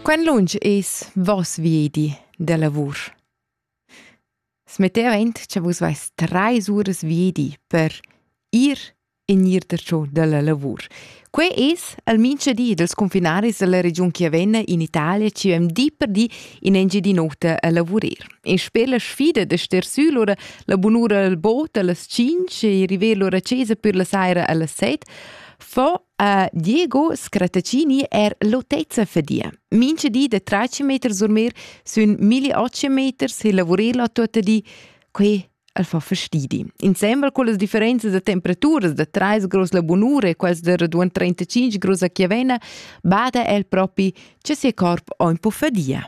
Quen lunsch es voss viedi da lavur. Smetteva aint cha vus vais trais uras viedi per ir e gnir darcho da la lavur. Quai es almincha di dels confinaris dalla regiun chi avenna in Italia chi vam di per di in Engiadin'Ota a lavurer. E sper la sfida da ster sü lura la bunura al bot a las 5 e river lura a chesa pür la saira a las 7, fo A Diego Scrattaccini er l'autezza fadia. Mincha di da 13 meter surmir sun 1800 meter se lavurer la tota di. Quei al fa fastidi. Insembel con las differenze da temperaturas da 30 grus la bunura e quels da raduan 35 grus a Chiavena, bada el propi che se corp ho un po fadia.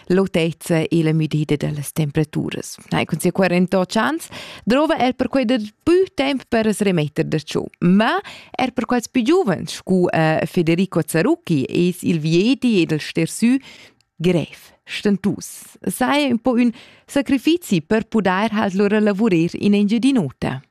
l'autezza e la müdida dellas temperaturas. Nei cun sia 48 chans drova er per quei dat più temp per remetter da ciò, ma er per quels più giovens scu eh, Federico Zarucchi es il viedi ed il stersü grev stentus. Sai un po un sacrifizi per pudair halt lura lavurer in Engiadinota.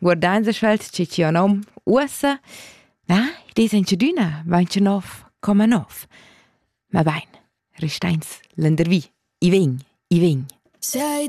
guardains a sch'els chi chi ho nom uossa, ah, id es inchadüna, vainch nov, come nov. Ma bain, restains lendervi, i vegn, i vegn. Sei